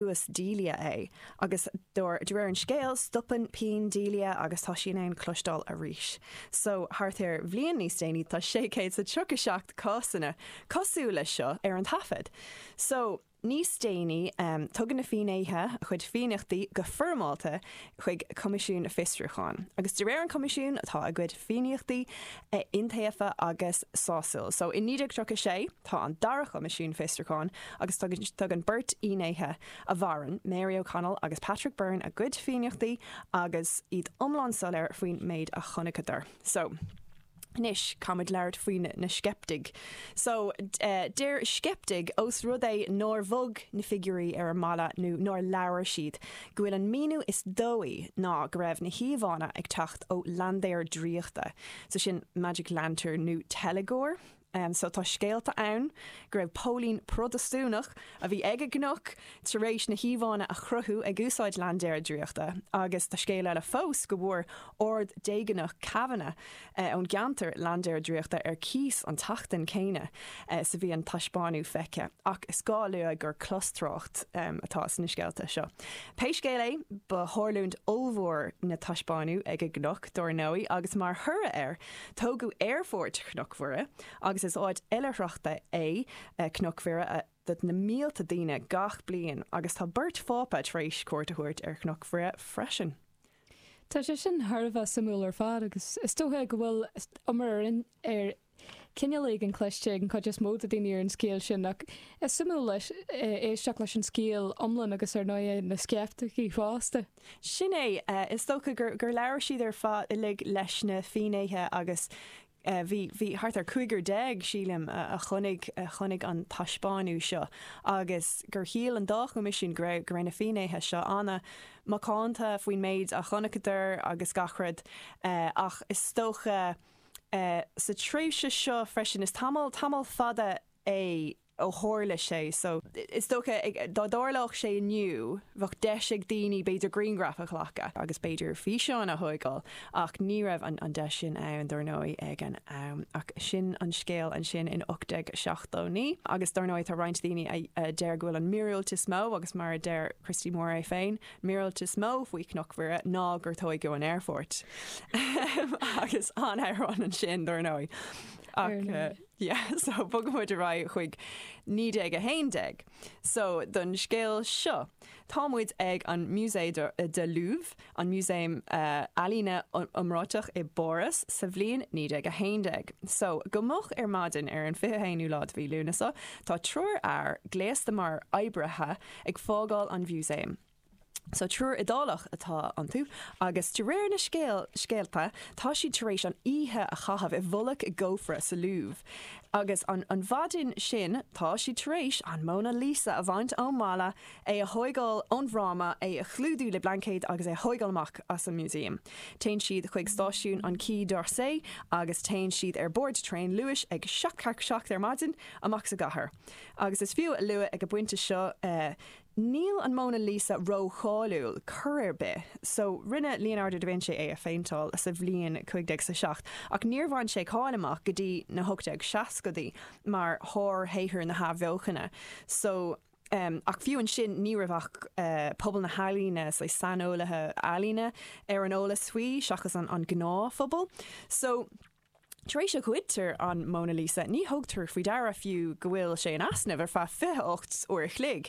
ar chluas Delia é agus de, de réir an scéil, stopann pian Delia agus tá sí in ann cloisteáil arís. So, thart ar bhliain níos déanaí tá sé chéad is a tríocha a seacht cásanna cosúil leis seo ar an taifead. So, níos déanaí, em, tugann na fínnéithe a gcuid fianaíochtaí go foirmeálta chuig Coimisiún Fiosrúcháin. Agus de réir an Choimisiúin tá a gcuid fianaíochtaí iontaofa agus sásúil. So i 1936 tá an dara Coimisiún Fiosrúcháin agus tugann beirt fhinnéithe a mhaireann, Mary O'Connell agus Patrick Byrne a gcuid fianaíochtaí agus iad iomlán soiléir faoin méid a chonaiceadar. So. Anois, caithfimid labhairt faoi na sceiptigh. So, deir sceiptigh, ós rud é nár bhog na figiúirí ar an mballa nó nár labhair siad, go bhfuil an míniú is dóichí ná go raibh na híomhánna ag teacht ó laindéar draíochta, so sin magic lantern nó teilgeoir. Em so tá scéalta ann go raibh póilín Prodastúnach a bhí ag an gcnoc tar éis na híomhánna a chruthú ag úsáid laindéar draíochta agus tá scéal eile fós go bhfuair Ard-Deagánach Kavanagh eh ón gceantar laindéar draíochta ar cíos an tseachtain céanna eh 's a bhí an taispeánadh feicthe ach is gá a lua gur clostrácht em atá sna scéalta seo. Pé scéal é ba thárlúint ollmhór an taispeánadh ag an gcnoc dár ndóigh agus mar thoradh air, Tógadh Aerfort Chnoc Mhuire, agus is áit oilithreachta é Cnoc Mhuire do na mílte daoine gach bliain, agus tá beirt Phápa tar éis cuairt a thabhairt ar Chnoc Mhuire freisin. Tá sé sin thar a bheith suimiúil ar fad, agus is dócha go bhfuil iomrá ar chineál éigin cluinste ag an chuid is mó de daoine ar an scéal sin, ach is suimiúil éisteacht leis an scéal iomlán agus ar ndóigh na sceiptigh fosta. Sin é. Is dócha gur labhair siad ar fad uilig leis na finnéithe agus bhí, bhí thart ar cúigear déag, sílim, a chonaic, a chonaic an taispeánadh seo agus gur shíl an dá choimisiún go raibh na finnéithe seo an-macánta faoin méid a chonaiceadar agus gach rud ach is dócha sa tréimhse seo freisin, is tamall, tamall fada é, ó thárla sé so, is dócha, dá dtárlódh sé inniu, bheadh deis ag daoine b'fhéidir grianghraif a ghlacadh agus b'fhéidir físeáin a thóigeáil ach ní raibh an deis sin ann dár ndóigh ag an am. Ach sin an scéal ansin in 1879 agus dár ndóigh tá roinnt daoine a deir go bhfuil an míorúilt is mó agus mar a deir Christy Moore é féin, an míorúilt is mó faoi Chnoc Mhuire ná gur tóigeadh an t-aerfort. Agus an-amhrán ansin dár ndóigh. Ach. Yeah, so bogfaidh muid ar aghaidh chuig 1911. So, don scéal seo, tá muid ag an Musée de de Louvre, an musaem ealaíne iomráiteach i bPáras, sa bhliain 1911. So, go moch ar maidin ar an fiche haonú lá de mhí Lúnasa, tá triúr fhear, gléasta mar oibrithe, ag fágáil an mhusaeim. So triúr Iodálach atá iontu agus de réir na scéalta tá siad tar éis an oíche a chaitheamh i bhfolach i gcófra sa Louvre. Agus an mhaidin sin tá siad tar éis an Mona Lisa a bhaint ón mballa, é a thóigeáil ón bhfráma, é a chlúdú le blaincéad agus é a thóigeáil amach as an músaem. Téann siad chuig stáisiún an Quai d'Orsay agus téann siad ar bord traein luais ag seacht tar seacht ar maidin amach as an gcathair. Agus is fiú a lua ag an bpointe seo, Níl an Mona Lisa ró-cháiliúil cor ar bith, so rinne Leonardo da Vinci é a phéinteáil sa bhliain cúig déag is a seacht, ach níor bhain sé cáil amach go dtí na hocht déag seascadaí mar shár-shaothar na hAthbheochana, so em, ach fiú ansin ní raibh ach eh pobal na healaíne, say saineolaithe ealaíne, ar an eolas faoi seachas an gnáthphobal. So. Tar éis go ngoidtear an Mona Lisa ní thugtar faoi deara fiú go bhfuil sé in easnamh ar feadh 28 uair a chloig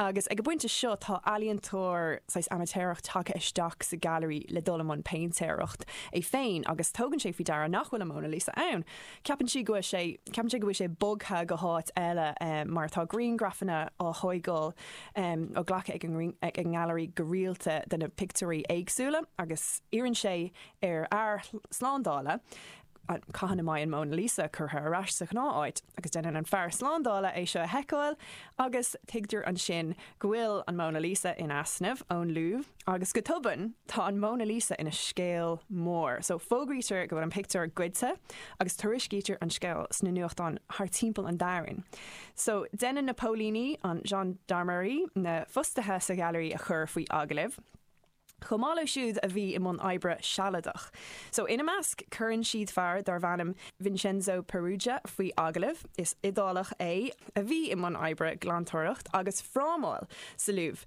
agus ag an bpointe seo tá ealaíontóir saghas amaitéarach tagtha isteach sa ngailearaí le dul i mbun péintéireacht é féin agus tugann sé faoi deara nach bhfuil an Mona Lisa ann. Ceapann sé go bhfuil sé ceapann sé go bhfuil sé bogtha go háit eile mar tá grianghrafanna á thóigeáil á nglacadh ag an nGailearaí go rialta de na pictiúirí éagsúla agus iarrann sé ar fhear slándála cathain a mbeidh an Mona Lisa curtha ar ais sa ghnáth áit agus déanann an fear slándála é seo a sheiceáil agus tuigtear ansin go bhfuil an Mona Lisa in easnamh ón Louvre agus go tobann tá an Mona Lisa ina scéal mór. So fógraítear go bhfuil an pictiúr goidte agus tuairiscítear an scéal sna nuachtáin thar timpeall an domhain. So déanann na póilíní, an Gendarmerie, na fostaithe sa ghailearaí a chur faoi agallamh. chomh maith leo siúd a bhí i mbun oibre sealadach. So ina measc cuireann siad fear darbh ainm Vincenzo Peruggia faoi agallamh. Is Iodálach é a bhí i mbun oibre glantóireacht agus frámáil sa Louvre.